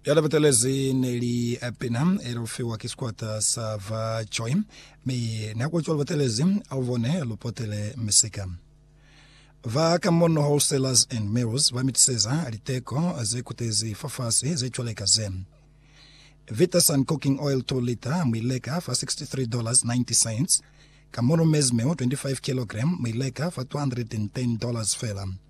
Ya lebetelezi ne li Abner, elufiwa ki sikwata sa ba Joy, mi ne a kwetšwa lubetelezi a lubone lu potele misika. Ba ka mono Wholesalers and Mills ba mitiseza liteko ze kutezi fafasi ze cwaleka ze, Vitasun cooking oil 2 lita mu ileka fa $63.90, ka mono maize meal 25 kilogram mu ileka fa $210 fela.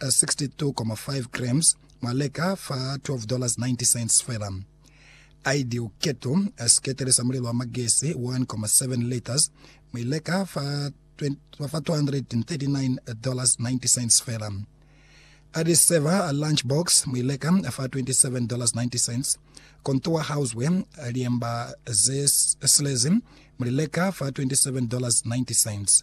62,5 grams, mwa leka fa $12.90 fela. Ideal Keto, siketele sa mulelo wa magesi, 1,7 liters, mu i leka fa $239.90 fela. Adi Saver Lunch Box, mu i leka fa $27.90. Contour Houseware, liemba ze silezi, mu li leka fa $27.90.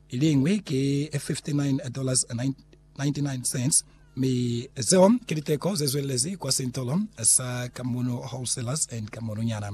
Iliñwi ki $59.99, mi zeo ki liteko zezwelelezi kwa sintolo sa Kamunu Wholesalers and Kamununyana.